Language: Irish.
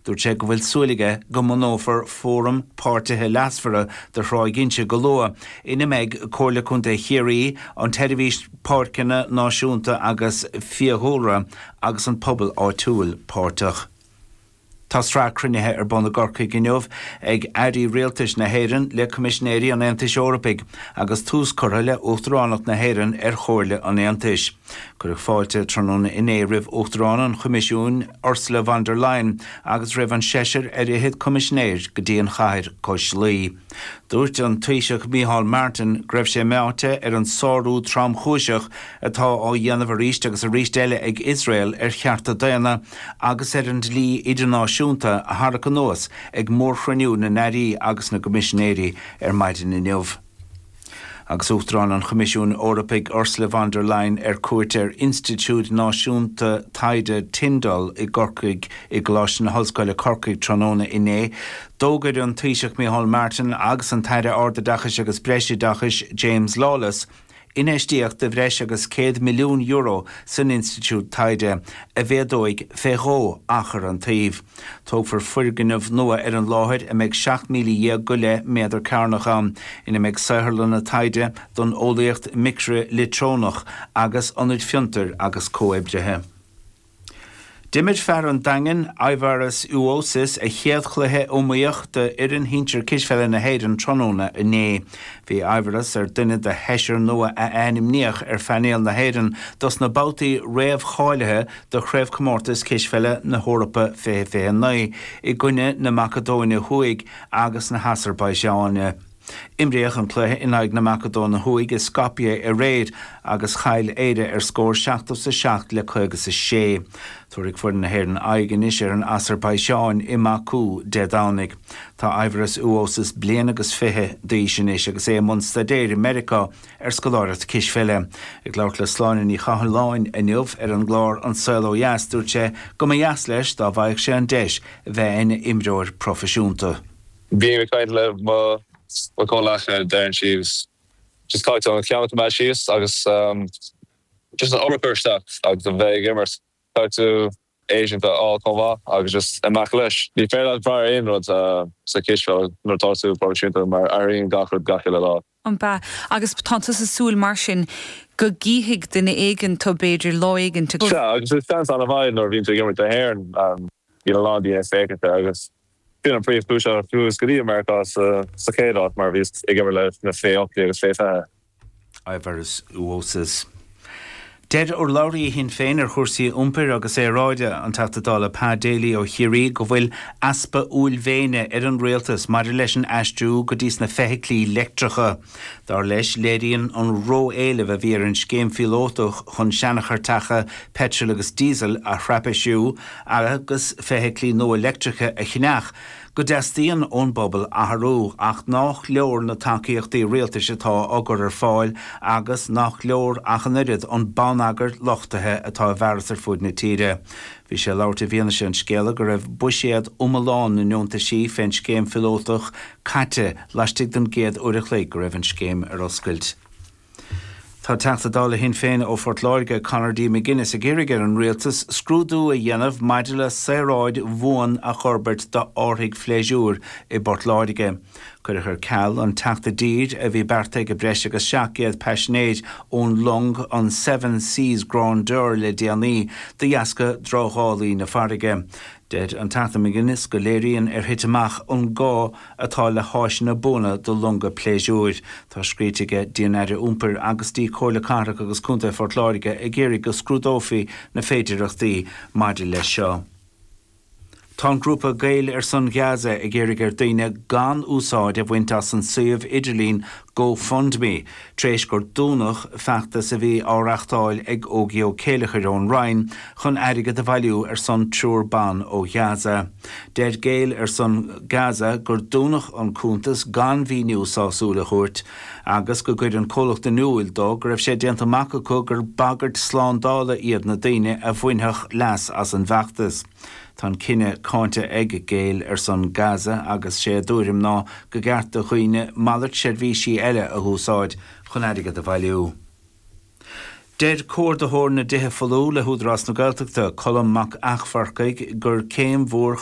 Dúirt sé go bhfuil súil aige go mbunófar fóram páirtithe leasmhara do Thráigh Inse go luath, ina mbeidh Comhairle Contae Chiarraí, an tSeirbhís Páirceanna Náisiúnta agus Fiadhúlra agus an pobal áitiúil páirteach. Tá sraith cruinnithe ar bun i gCorcaigh inniu ag Airí Rialtais na hÉireann le Coimisinéirí an Aontais Eorpaigh agus tús curtha le Uachtaránacht na hÉireann ar Chomhairle an Aontais. Cuireadh fáilte tráthnóna inné roimh Uachtarán an Choimisiúin, Ursula von der Leyen, agus roimh an seisear ar fhichead Coimisinéir go dtí an chathair cois Laoi. Dúirt an Taoiseach Micheál Martin go raibh sé meáite ar an sárú tromchúiseach atá á dhéanamh arís agus arís eile ag Iosrael ar chearta daonna agus ar an dlí idirnáisiúnta a tharrac anuas ag mórchruinniú na n-airí agus na gcoimisinéirí ar maidin inniu. Agus Uachtarán an Choimisiúin Eorpaigh Ursula von der Leyen ar cuairt ar Institiúid Náisiúnta Taighde Tyndall i gCorcaigh i gColáiste na hOllscoile Corcaigh tráthnóna inné, d'fhógair an Taoiseach Micheál Martin agus an tAire Ardoideachais agus Breisoideachais James Lawless infheistíocht de bhreis agus €100 milliún san institiúid taighde, a mhéadóidh fé dhó achar an tsuímh. Tógfar foirgneamh nua ar an láthair a mbeidh 17,000 go leith méadar cearnach ann, ina mbeidh saotharlanna taighde don eolaíocht micrileictreonach agus ionaid fiontair agus comhoibrithe. D'imir fear an Daingin, Aivaras Uosis, a chéad chluiche iomaíoch d'fhoireann shinsir cispheile na hÉireann tráthnóna inné. Bhí Aivaras ar dhuine de sheisear nua a ainmníodh ar phainéal na hÉireann dos na babhtaí réamhcháilithe do Chraobhchomórtas Cispheile na hEorpa 2029 i gcoinne na Macadóine Thuaidh agus na hAsarbaiseáine. Imríodh an cluiche in aghaidh na Macadóine Thuaidh i Skopje aréir agus chaill Éire ar scór 77 le 56. Tabharfaidh foireann na hÉireann aghaidh anois ar an Asarbaiseáin i mBaku Dé Domhnaigh. Tá Aivaras Uosis bliain agus fiche d'aois anois agus é i mbun staidéir i Meiriceá ar scoláireacht cispheile. Ag labhairt le Sláine Ní Chathalláin inniu ar an gclár An Saol Ó Dheas, dúirt sé go mba dheas leis dá bhfaigheadh sé an deis a bheith ina imreoir proifisiúnta. Bím ag caint le mo chomhleacaithe, deireann siad just caithfidh mé an ceann a choimeád síos agus. just an obair a chur isteach agus a bheith ag imirt, try agent a fháil chomh maith agus just imeach leis. Ní féidir leat brath ar aon rud sa chispheil nuair atá tú proifisiúnta mar athraíonn gach rud gach uile lá. Ambaist. Agus tánn tú ag súil mar sin go gcífidh duine éigint tú b'fhéidir lá éigint. Sea, agus is seans an-mhaith é nuair a bhíonn tú ag imirt don Éirinn, bíonn a lán daoine ag féachaint ort agus. B'in an príomhchúis ar chuas go dtí Meiriceá sa chéad áit, mar bhíos ag imirt leis na fé hocht déag agus fé fiche. I Verus Voces, deir urlabhraí Shinn Féin ar chúrsaí iompair agus aeráide, an Teachta Dála Pa Daly ó Chiarraí, go bhfuil easpa uaillmhéine ar an Rialtas maidir leis an aistriú go dtí sna feithiclí leictreacha. Dar leis, léiríonn an ró-éileamh a bhí ar an scéim phíolótach chun seancharrtacha peitril agus díosail a thraipisiú agus feithiclí nua leictreacha a cheannach, go dteastaíonn ón bpobal athrú ach nách leor na tacaíochtaí rialtais atá á gcur ar fáil agus nach leor ach an oiread an bonneagair luchtaithe atá i bhfearas ar fud na tíre. Bhí sé ag labhairt i bhfianaise an scéala go raibh buiséad iomlán na ndeontaisí fén scéim phíolótach caite laistigh den gcéad uair a chloig go raibh an scéim ar oscailt. Tá Teachta Dála Shinn Féin ó Phort Láirge, Conor D. McGuinness, ag iarraidh ar an Rialtas scrúdú a dhéanamh maidir le saoráid bhuan a fhorbairt d'árthaigh phléisiúir i bPort Láirge. Cuireadh ar ceal an teacht i dtír a bhí beartaithe ag breis agus 700 paisinéir ón long an Seven Seas Grandeur le déanaí de dheasca drochdhálaí na farraige. Deir an Teachta McGuinness go léiríonn ar thit amach an gá, atá le háiseanna buana do longa pléisiúir. Tá scríte aige dtí an Aire Iompair agus dtí Comhairle Cathrach agus Contae Phort Láirge ag iarraidh go scrúdófaí na féidireachtaí maidir leis seo. Tá an grúpa Gaeil ar son Gaza ag iarraidh ar daoine gan úsáid a bhaint as an suíomh idirlín GoFundMe, Tar éis gur dúnadh feachtas a bhí á reachtáil ag Ogie Ó Céilleachair ón Rinn chun airgead a bhailiú ar son triúr ban ó Ghaza, deir Gaeil ar son Gaza gur dúnadh an cuntas gan mhíniú sásúil a thabhairt agus go gcuir an comhlacht in iúl dó go raibh sé déanta amach acu gur bagairt slándála iad na daoine a bhainfeadh leas as an bhfeachtas. Tá an cinneadh cáinte ag Gaeil ar son Gaza agus sé a dtuairim ná go gceart do dhaoine malairt seirbhísí eile a húsáid chun airgead a bhailiú. Deir Comhordaitheoir na dTithe Folmha le hÚdarás na Gaeltachta, Colm Mac Eachmharcaigh, gur céim mhór chun